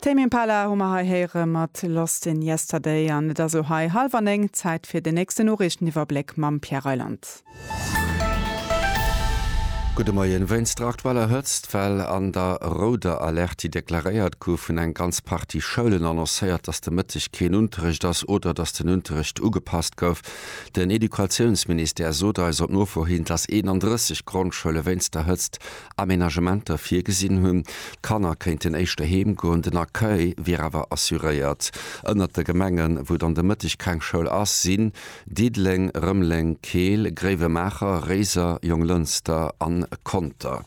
Tame Impala hu mer hei héiere mat Lost in Yesterday an et ass lo hei hallwer néng, Zäit fir den nächsten Noriichteniwwerbléck mam Pierre Reyland. Gudde Moien. Wéinst der aktueller Hëtzt, well an der rouder Alerte déi deklaréiert gouf, hunn eng ganz Partie Schoulen annoncéiert, dass de Mëtteg keen Unterrecht ass oder dass den Unterrecht ugepasst gouf. Den Educatiounsministère sot eis op Nofro hin, dass 31 Grondschoule wéinst der Hëtzt Amenagementer virgesinn hunn. D'Kanner kéinten éischter heem goen, den Accueil wier awer assuréiert. Ënnert de Gemengen, wou dann de Mëtteg keng Schoul ass, sinn Diddeleng, Rëmeleng, Keel, Gréiwemaacher, Réiser, Jonglënster a Conter.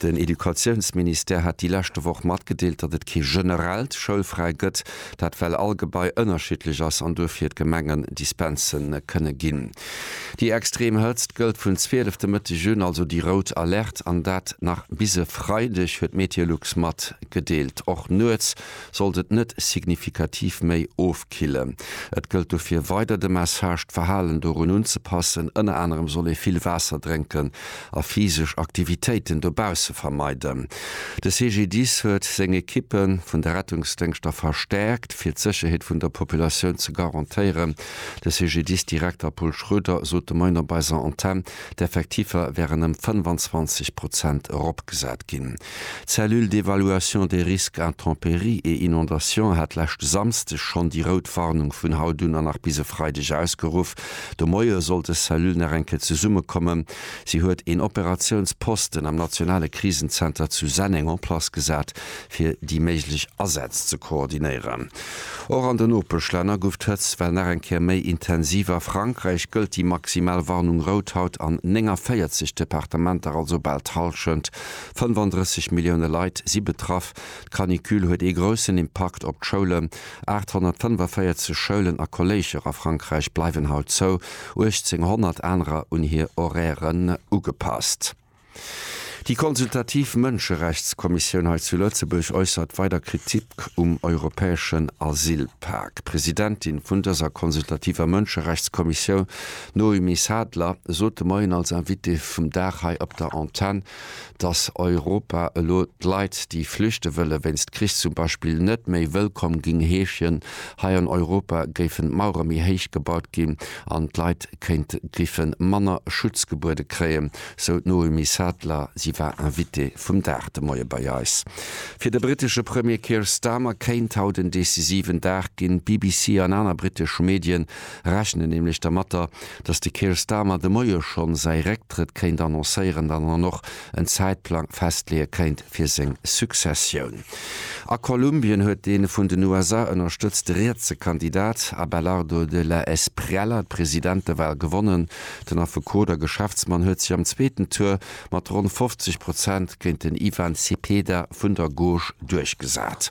Den Educatiounsministère hat déi leschte Woch matgedeelt, datt et kee generellt Schoulfräi gëtt, dat well all Gebai ënnerschiddlech ass an duerfir d'Gemengen Dispense kënne ginn. Déi extrem Hëtzt gëllt vun 12 de Mëtteg un, also déi rout Alerte, an dat nach bis e Freideg, huet Meteolux matgedeelt. Och nuets sollt et net signifikativ méi ofkillen. Et gëllt dofir weider de Message, d'Verhalen dorun unzepassen. Ënner anerem soll ee vill Waasser drénken a physesch Aktivitéiten dobausse vermeiden. De CGDIS huet seng Ekippe vun de Rettungsdéngschter verstäerkt, fir d'Sécherheet vun der Populatioun ze garantéieren. De CGDIS-Direkter Paul Schroeder sot de Moien op eiser Antenn, d'Effektiffer wären ëm 25 Prozent eropgesat ginn. D'Cellule d'évaluation des risques intempéries et inondations hat leschte Samsdeg schonn déi rout Warnung vun haut un a nach bis e Freideg ausgeruff. De Moie soll dës Cellule nach eng Kéier zesummekommen. Si huet een Operatiounsposten am nationale Krisenzenter zu Senneng en place gesat, fir déi méiglech Asätz ze koordinéieren. Och an de Nopeschlänner guff d'Hëtzt well nach eng Kéier méi intensiv. A Frankräich gëllt déi maximal Warnung rout haut an 49 Departementer, also bal d'Hallschent, 35 Millioune Leit, si betraff. D'Canicule huet ee groussen Impakt op d'Schoulen. 845 Schoulen a Kolléijer a Frankräich bleiwen haut zou, 1.800 anerer un hir Horairen ugepasst. Déi consultativ Mënscherechtskommissioun hei zu Lëtzebuerg äussert weider Kritik um europäeschen Asylpak. D'Presidentin vun dëser consultativer Mënscherechtskommissioun, d'Noémie Sadler, sot de Moien als Invitée vum Dag hei op der Antenn, datt Europa elo d'Leit, déi flüchte wëlle wéinst Krich zum Beispill, net méi wëllkomm géing heeschen. Hei an Europa géifen d'Mauere méi héich gebaut ginn an d'Leit kéinte géife manner Schutz gebuede kréien. sou d'Noémie Sadler. Si war Invitée vum Dag de Moie bei eis. Fir de brittesche Premier Keir Starmer kéint haut en decisiven Dag ginn. D'BBC an aner brittesch Medien rechnen nämlech dermatter, datt de Keir Starmer de Moie schonn säi Récktrëtt kéint annoncéieren an dann och en Zäitplang festleeë kéint fir seng Successioun. A Kolumbien huet dee vun den USA ënnerstëtzte rietse Kandidat Abelardo de la Espriella d'Presidentewal gewonnen. Den Affekot a Geschäftsmann huet sech am zweeten Tour mat ronn 50 Prozent géint den Ivan Cepeda vun der Gauche duerchgesat.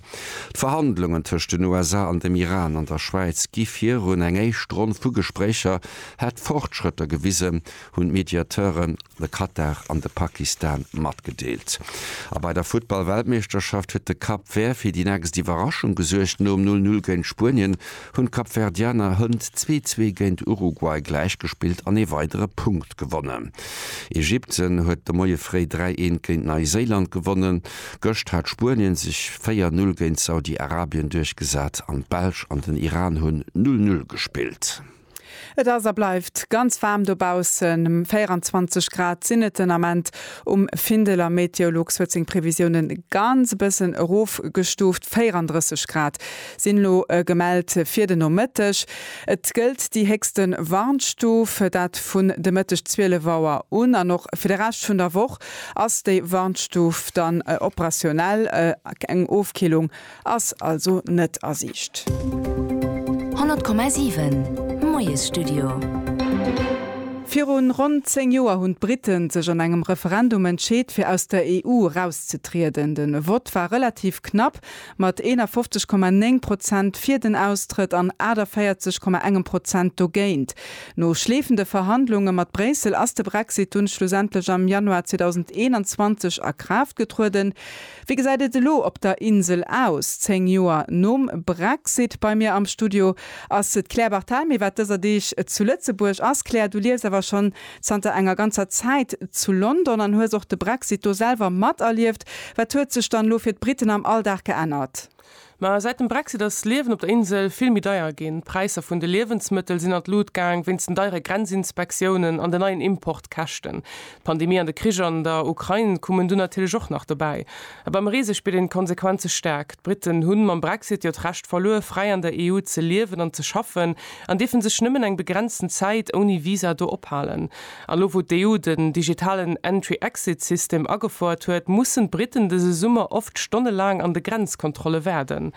D'Verhandlungen tëscht den USA an dem Iran an der Schwäiz gi virun. Eng éischt Ronn vu Gespréicher hätt Fortschrëtter gewisen, hunn d'Mediateuren, de Katar an de Pakistan, matgedeelt. A bei der Futtball-Weltmeeschterschaft huet de Cap Vert fir déi nächst Iwwerraschung gesuergt. Nom Null-Null géint Spuenien hunn d'Kapverdianer hënt zwee zwee géint Uruguay gläich gespillt an ee weidere Punkt gewonnen. Ägypten huet de Moie fréi 3 een géint Neiséiland gewonnen. Gëscht hat Spuenien sech 4 Null géint Saudi-Arabien duerchgesat an d'Belsch an den Iran hunn Null Null gespillt. Et ass a bleift ganz waarm dobaussen, 24 Grad sinn et den Ament um Findel a Meteolux huet seng Previsiounen e ganz e bëssen erofgestuuft. 34 Grad sinn elo gemellt fir den Nomëtteg. Et gëllt déi héchste Warnstuf, dat vun de Mëtteg 12 Auer un, an och fir de Rescht vun der Woch ass déi Warnstuf dann operationell. Eng Ofkillung Ass also net a Siicht. 100,7 Moiesstudio. Virun ronn 10 Joer hunn d'Briten sech an engem Referendum entscheet fir aus der EU erauszetrieden. Den Vott war relativ knapp, mat 51,9 Prozent fir den Austrëtt an 48,1 Prozent dogéint. No schleefende Verhandlunge mat Bréissel ass de Brexit dunn schlussendlech am Januar 2021 a Kraaft getrueden. Wéi gesäit et elo op der Insel aus, 10 Joer nom Brexit? Bei mir am Studio ass d'Claire Barthel. Mee wat dëser Deeg zu Lëtzebuerg ass, Claire, du liefs awer schonn zanter enger ganzer Zäit zu London an hues och de Brexit do selwer materlieft. Wat huet sech dann elo fir d'Briten am Alldag geännert? Mä säit dem Brexit ass d'Liewen op der Insel vill méi deier ginn. D'Präisser vun de Liewensmëttel sinn an d'Lut gaang, wéinst den deiere Grenzinspektiounen an den neien Importkäschten. D'Pandemie an de Krich an der Ukrain kommen dunn natierlech och nach dobäi. A beim Reese spiert een d'Konsequenze staark. D'Britten hunn mam Brexit jo d'Recht verluer, fräi an der EU ze liewen an ze schaffen an dierfen sech nëmmen eng begrenzten Zäit ouni Visa do ophalen. An elo wou d'EU den digitalen Entry-Exit System agefouert huet, mussen d'Briten dëse Summer oft stonnelaang an de Grenzkontrolle waarden.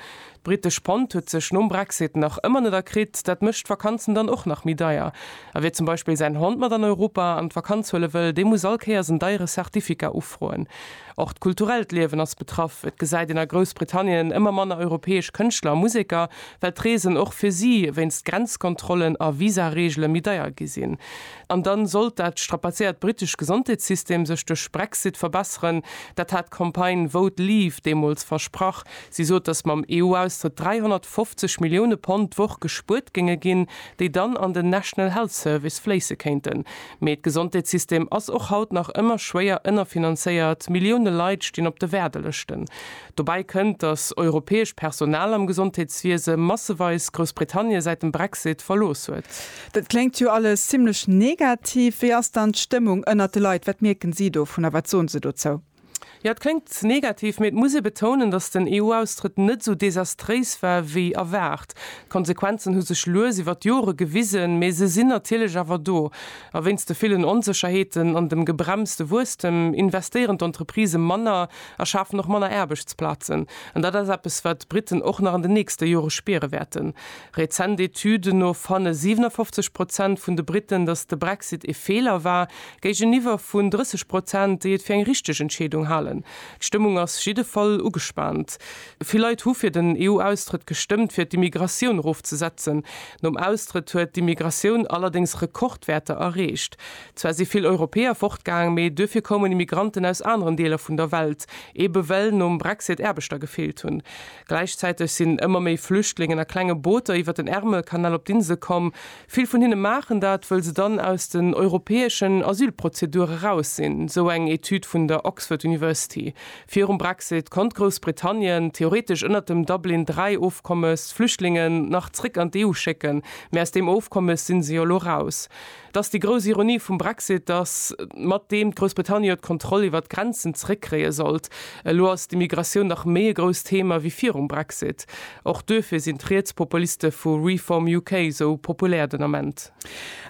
D'britesch Pond huet sech nom Brexit nach ëmmer net erkritt, dat mécht d'Vakanzen dann och nach méi deier. A wie zum Beispill säin Hond mat an Europa an d'Vakanz huele wëll, dee muss all Kéiers en deiere Certificat ufroen. Och d'kulturellt Liewen ass betraff, et gesäit een a Groussbritannien ëmmer manner europäesch Kënschtler a Museker, well d'Reesen och fir si wéinst Grenzkontrollen a Visareegele méi deier gi sinn. An dann sollt dat strapazéiert britescht Gesondheetssystem sech duerch Brexit verbesseren. Dat hat d'Campagne Vote Leave deemools versprach. Si sot, datt mam EU-Austrëtt 350 Millioune Pond d'Woch gespuert géinge ginn, déi dann an den National Health Service fléisse kéinten. Mee d'Gesondheetssystem ass och haut nach ëmmer schwéier ënnerfinanzéiert, Millioune Leit stinn op de Waardelëschten. Dobäi kënnt, datt europäesch Personal am Gesondheetswiese masseweis Groussbritannie säit dem Brexit verlooss huet. Dat kléngt jo alles zimmlech negativ. Wéi ass dann d'Stëmmung ënnert de Leit? Wat mierken si dovun a wat soen se dozou? Jo, et kléngt negativ, mee et muss ee betounen, datt den EU-Austrëtt net esou desastréis war wéi erwaart. D'Konsequenzen hu sech lues iwwer d'Jore gewisen, mee se sinn natierlech awer do. A wéinst de villen Onsécherheeten an dem gebremste Wuesstem investéieren d'Entreprisë manner. a schafen och manner Aarbechtsplazen. An dat ass eppes, wat d'Briten och nach an den nächste Jore spiere wäerten. Rezent Etüden no fanne 57 Prozent vun de Briten, datt de Brexit ee Feeler war, géigeniwwer vun 30 Prozent, déi et fir eng richteg Entscheedung halen. D'Stëmmung ass jiddefall ugespaant. Vill Leit hu fir den EU-Austrëtt gestëmmt, fir d'Immigratioun erofzesetzen. Nom Austrëtt huet d'Immigratioun allerdéngs Rekordwäerter erreecht. Zwar si vill Europäer fortgaang, mee duerfir koumen Immigranten aus aneren Deeler vun der Welt, ebe well nom Brexit Aarbechter gefeelt hunn. Gläichzäiteg sinn ëmmer méi Flüchtlingen a klenge Booter iwwer den Ärmelkanal op d'Insel komm. Vill vun hinne maachen dat, wëll se dann aus den europäeschen Asylprozedure raus sinn, sou eng Etüd vun der Oxford University. Virum Brexit konnt Groussbritannien theoretesch ënnert dem Dublin III Ofkommes d'Flüchtlingen nach zréck an d'EU schécken, mee aus deem Ofkommes sinn se jo elo raus. Dass déi grouss Ironie vum Brexit, dass mat deem d'Groussbritannien jo d'Kontroll iwwert d'Grenzen zeréckkréie sollt. Elo ass d'Immigratioun nach méi e grousst Thema wéi virum Brexit. Och duerfir sinn d'Rietspopuliste vu Reform UK esou populär den Ament.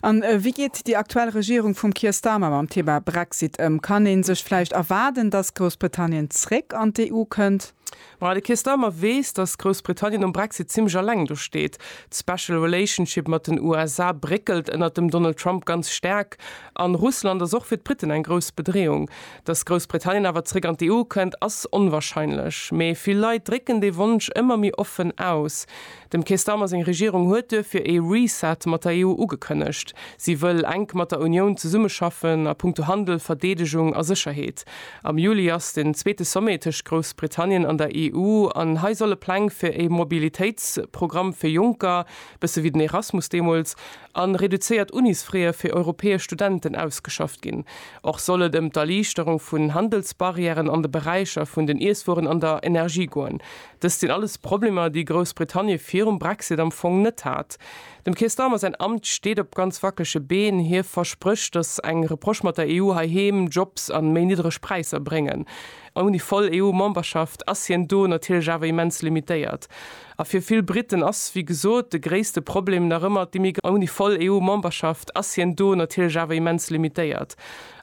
A wéi geet déi aktuell Regierung vum Keir Starmer mam Thema Brexit ëm? Kann ee sech vläicht erwaarden, dass Groussbritannien zréck an d'EU kënnt? Ma de Keir Starmer weess, datt Groussbritannien nom Brexit zimmlech eleng do steet. D'Special Relationship mat den USA bréckelt ënnert dem Donald Trump ganz staark, a Russland ass och fir d'Briten eng grouss Bedreeung. Datt Groussbritannien awer zeréck an d'EU kënnt, ass onwarscheinlech, mee vill Leit drécken dee Wonsch ëmmer méi offen aus. Dem Keir Starmer seng Regierung huet duerfir ee Reset mat der EU ugekënnegt. Si wëll enk mat der Unioun zesummeschaffen a punkto Handel, Verdeedegung a Sécherheet. Am Juli ass den zweete Sommet tëscht Groussbritannien an der EU an hei solle Pläng fir ee Mobilitéitsprogramm fir Jonker, bësse wéi den Erasmus deemools, a reduzéiert Unisfrae fir europäesch Studenten ausgeschafft ginn. Och soll et ëm d'Erliichterung vun Handelsbarrièren an de Beräicher vun den Iesswueren an der Energie goen. Dëst sinn alles Problemer, déi Groussbritannie virum Brexit am Fong net hat. Dem Keir Starmer säin Amt steet op ganz wackelege Been. Hie versprécht, datt eng Reproche mat der EU heiheem Jobs an méi niddreg Präisser bréngen. Ouni voll EU-Memberschaft ass hien do natierlech awer immens limitéiert. A fir vill Briten ass, wéi gesot, de gréisste Problem nach ëmmer d'Immigratioun. Ouni voll EU-Memberschaft ass hien do natierlech awer immens limitéiert.